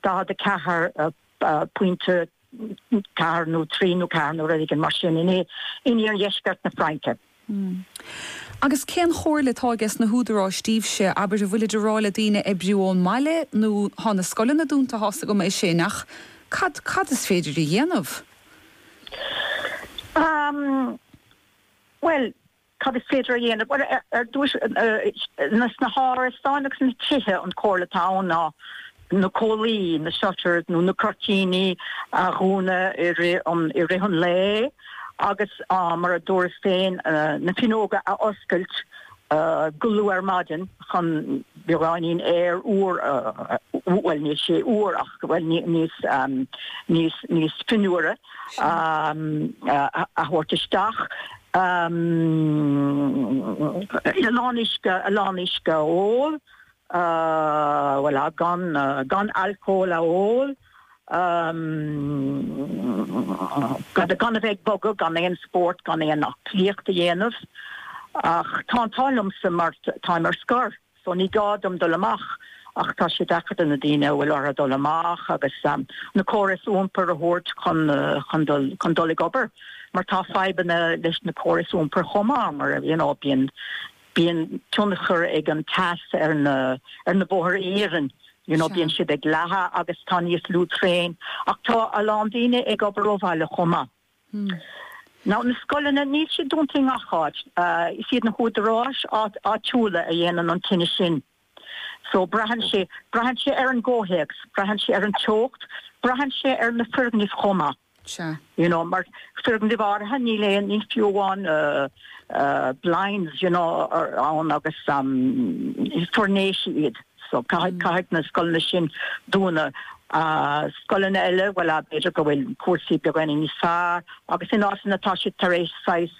bhfeicfear 44 pointe, ceathair nó trí nó ceathair nó rud éigin mar sin, in iardheisceart na Fraince. Agus cén chomhairle atá ag sna húdaráis daoibhse? Abair, an bhfuilid ag rá le daoine oibriú ón mbaile nó tá na scoileanna dúnta, tá a fhios agam é sin, ach cad, cad is féidir a dhéanamh? Bhuel. Cad is féidir a dhéanamh? Bhuel, ar dtús, sna hárasáin agus sna tithe, an chomhairle atá ann ná na comhlaí, na shutters nó na cuirtíní, a dhúnadh i rith an lae agus, mar a dúras féin, na fuinneoga a oscailt go luath ar maidin chun beagáinín aer úr, bhuel, níl sé úr ach, bhuel, níos fionnuaire, a thabhairt isteach. a lán uisce, a lán uisce a ól, bhuel a, gan, gan alcól a ól, gan, gan a bheith ag bogadh, gan aon spórt, gan aon aclaíocht a dhéanamh. Ach tá an t-ádh liomsa mar táim ar scor. so ní gá dom dul amach ach tá sé deacair do na daoine a bhfuil orthu dul amach agus na córais iompair a thabhairt chun dul ag obair mar tá fadhbanna leis na córais iompair chomh maith mar you know bíonn bíonn tionchar ag an teas ar na ar na bóthar iarainn you know bíonn siad ag leathadh agus tá níos lú traenacha tá a lán daoine ag obair ó bhaile chomh maith Nó na scoileanna, níl siad dúnta i ngach áit. Is iad na húdaráis áitiúla a dhéanann an cinneadh sin. So, braitheann sé, braitheann sé ar an gcomhthéacs, braitheann sé ar an teocht, braitheann sé ar na foirgnimh chomh maith. You know, mar foirgnimh áirithe níl aon, níl fiú amháin blinds, you know, ann agus is foirnéisí iad. So, caithfidh na scoileanna sin dúnadh. Scoileanna eile, bhuel, b'fhéidir go bhfuil cúrsaí beagáinín níos fearr agus in áiteanna tá siad tar éis saghas,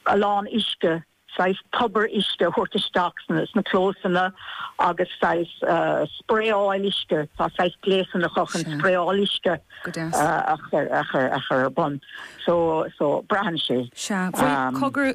a lán uisce, saghas tobar uisce a thabhairt isteach sna clósanna agus saghas spraeáil uisce, tá saghas gléasanna acu chun spraeáil uisce a chur ar bun. So, so, braitheann sé. Sea. Bhuel, cogar.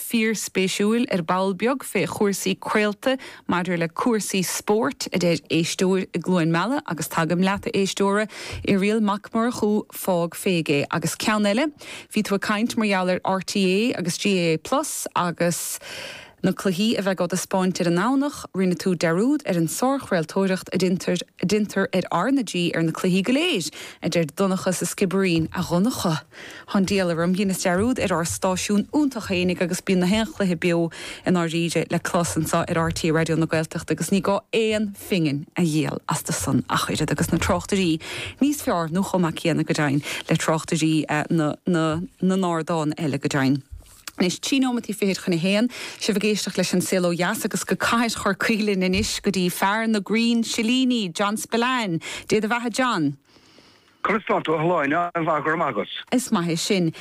Fíorspéisiúil ar ball beag fé chúrsaí craolta maidir le cúrsaí spóirt, a deir éisteoir i gCluain Meala agus tagaim leat, a éisteora, Irial Mac Murchú, fág fé é. Agus ceann eile, bhí tú ag caint mar gheall ar RTÉ agus GAA Plus agus na cluichí a bheidh á dtaispeáint ar an nDomhnach, rinne tú dearúd ar an sárchraoltóireacht a deintear ar R na G ar na cluichí go léir, a deir Donncha sa Sciobairín, A Dhonncha! 'S an diabhal orm, dheineas dearúd ar ár stáisiún iontach fhéinig agus bíonn gach aon chluiche beo i ndáiríre le clos anso ar RTÉ Raidió na Gaeltachta agus ní gá aon phingin a dhíol astu san ach oiread agus na tráchtairí níos feárr nó chomh maith céanna go deimhin le tráchtairí na n-ardán eile go deimhin. Anois, trí nóimeataí fichid chun a haon, sibh ag éisteacht leis An Saol Ó Dheas agus go cathair Chorcaí linn anois go dtí fear na gcrann silíní, John Spillane. Dé do bheatha John. Conas tá tú, a Shláine? An-mhaith, go raibh maith agat. Is maith é sin.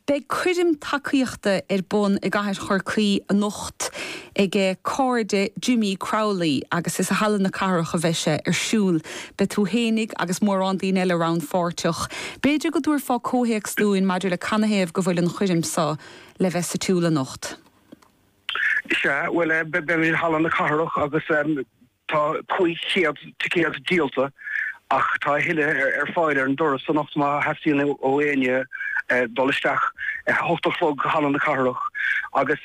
Beidh coirm tacaíochta ar bun i gcathair Chorcaí anocht ag cairde Jimmy Crowley agus is i Halla na Cathrach a bheidh sé ar siúl. Beidh tú fhéinig agus mórán daoine eile rannpháirteach. B'fhéidir go dtabharfá comhthéacs dúinn maidir le canathaobh go bhfuil an choirm seo le bheith sa tsiúl anocht? Sea, bhuel, beimid i Halla na Cathrach agus. Tá 500 ticéad díolta ach tá a thuilleadh ar fáil ar an doras anocht má theastaíonn ó éinne dul isteach. A hocht a chlog, Halla na Cathrach, agus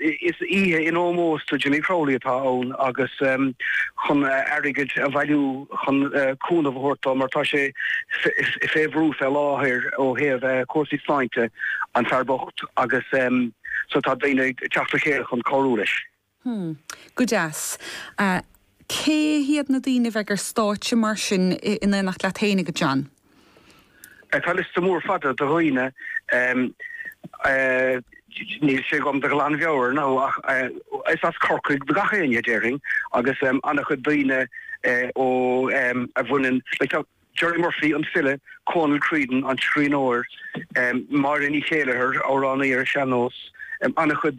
is oíche in ómós do Jimmy Crowley atá ann agus chun airgead a bhailiú chun cúnamh a thabhairt dó mar tá sé fé bhrú fé láthair ó thaobh cúrsaí sláinte, an fear bocht, agus so tá daoine ag teacht le chéile chun cabhrú leis. Hmm. Go deas. Cé hiad na daoine a bheidh ar stáitse mar sin in éineacht leat féinig, a John? Tá liosta mór fada de dhaoine. Níl sé agam de ghlanmheabhair now ach is as Corcaigh do gach éinne, déarfainn, agus an-chuid daoine ó a bhaineann le Gerry Murphy, an file, Cónal Creedon, an scríbhneoir, Máire Ní Chéileachair, amhránaí ar an sean-nós, an-chuid